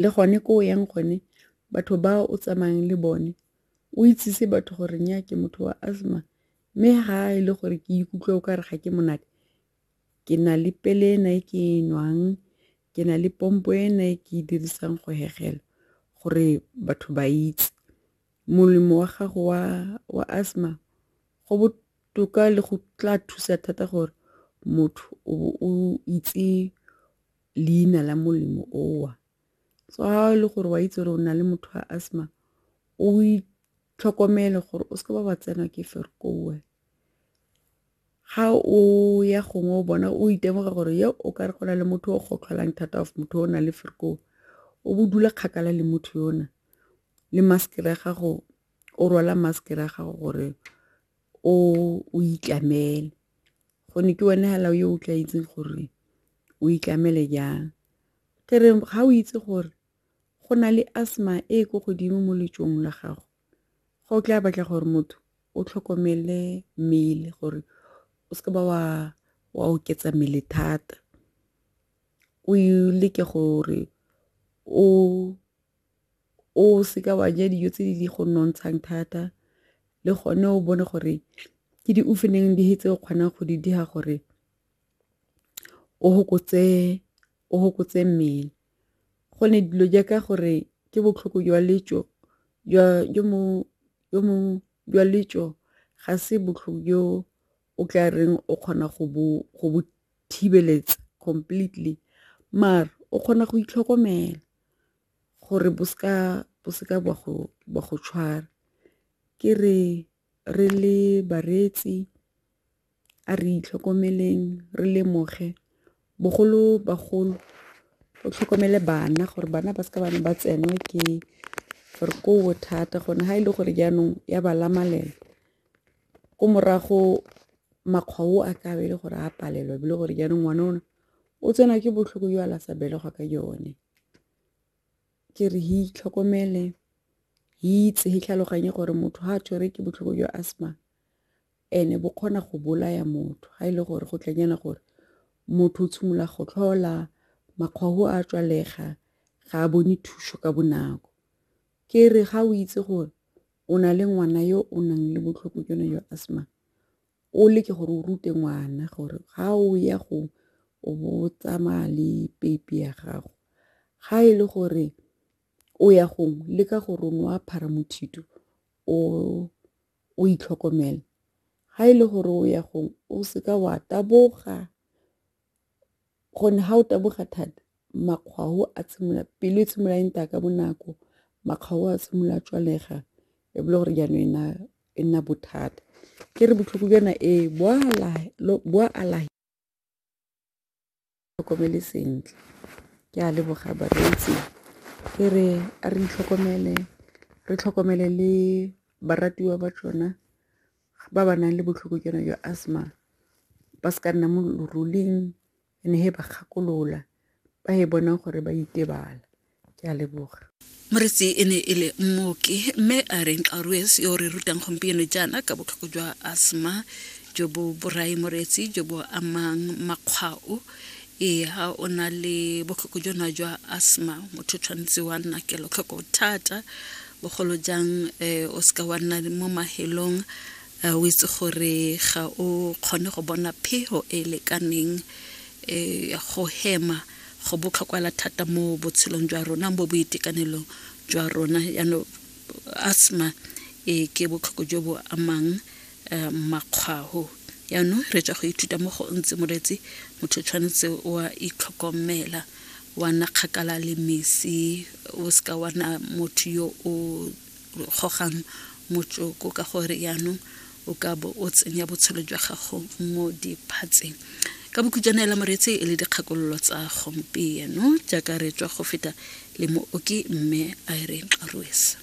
le gone ko o yang gone batho ba o tsamayang le bone o itsise batho gore nya ke motho wa asthma mme ga e le gore ke ikutlwa o ka re ga ke monate ke na le pele ena e ke e nwang ke na le pompo ena e ke e dirisang go hegela gore batho ba itse molemo wa gago wa wa asthma go botoka le go tla thusa thata gore motho o itse leina la molemo owa so ga e le gore wa itse gore o na le motho wa asthma o itlhokomele gore o seke ba ba tsenwa ke ferkowe ga o ya gongwe o bona o itemoga gore yo o ka re go na le motho o gotlholang thata of motho o na le ferkowe o bo dula kgakala le motho yona le maskere ya gago o rwala maskere ya gago gore o itlamele Gone ke wena hela yo o tla itseng gore o itlamele jang. Ke re ga o itse gore go na le asthma e ko godimo mo letsong la gago, ga o tla batla gore motho o tlhokomele mmele gore o seke ba wa wa oketsa mmele thata. O leke gore o o seka wa ja dijo tse di go nontshang thata le gone o bone gore ke di oofeneng di tse o kgonang go di dira gore o gokotse mmele go ne dilo jaaka gore ke botlhoko jwa letso jwa letso ga se botlhoko jo o tla reng o kgona go bo thibeletsa completely maar o kgona go itlhokomela. gore bo seka bo seka ba go ba go tshwara ke re re le bareetsi a re itlhokomeleng re lemoge bogolo bagolo o tlhokomele bana gore bana ba seka bana ba tsenwe ke gore ko thata gone ha e le gore jaanong ya ba lamalela ko morago makgwa o a kabe le gore a palelwa e le gore jaanong ngwana ona o tsenwa ke botlhoko yo a la sa belegwa ka yone ke re hi itlhokomele hi itse hi tlhaloganye gore motho ha a tshwere ke botlhoko jwa asthma ene bo kgona go bolaya motho ha e le gore go tlanyana gore motho o tshimolola go tlhola makgwago a tswalega ga a bone thuso ka bonako ke re ga o itse gore o na le ngwana yo o nang le botlhoko jone jwa asthma o leke gore o rute ngwana gore ga o ya go o bo o tsamaya le peipi ya gago ga e le gore o ya gongwe le ka gore o ne wa phara mothito o o itlhokomele ga e le gore o ya gongwe o seka wa taboga Gonne ga o taboga thata makgwao a tshimolola, pelo e tshimolola e nta ka bonako, makgwao a tshimolola a tswalega e be e le gore jaanong e nna bothata. Ke re botlhoko jwa yona ee bo a alafa tlhokomele sentle ke a leboga bareetsi ke re a re itlhokomele re tlhokomele le baratiwa ba tsona. ba ba nang le botlhoko jona jwa asthma ba se ka nna mo loruling and he ba kgakolola ba e bonang gore ba itebala ke a leboga moretsi e ne e le mmoki mme a re nkarues yo re rutang gompieno jaana ka botlhoko jwa asthma jo bo borai moretsi jo bo amang makgwao ee ga o na le botlhoko jona jwa asthma motho tshwanetse wa nna kelotlhoko thata bogolo jang um o seka wa nna mo mahelong um o itse gore ga o kgone go bona phego e e lekaneng um go hema go botlhokwala thata mo botshelong jwa rona bo boitekanelong jwa rona yaanong asthma e ke botlhoko jo bo amang um makgwao yaanong re tswa go ithuta mo go ntse moreetsi motho tshwanetse wa itlhokomela wa na kgakala le mesi o seka wa na motho yo o gogang motsoko ka gore yaanong o ka bo o tsenya botshelo jwa gago mo diphatseng ka bokhutšwana ela moreetsi e le dikgakololo tsa gompieno jaaka re tswa go feta le mooki mme irene rwesa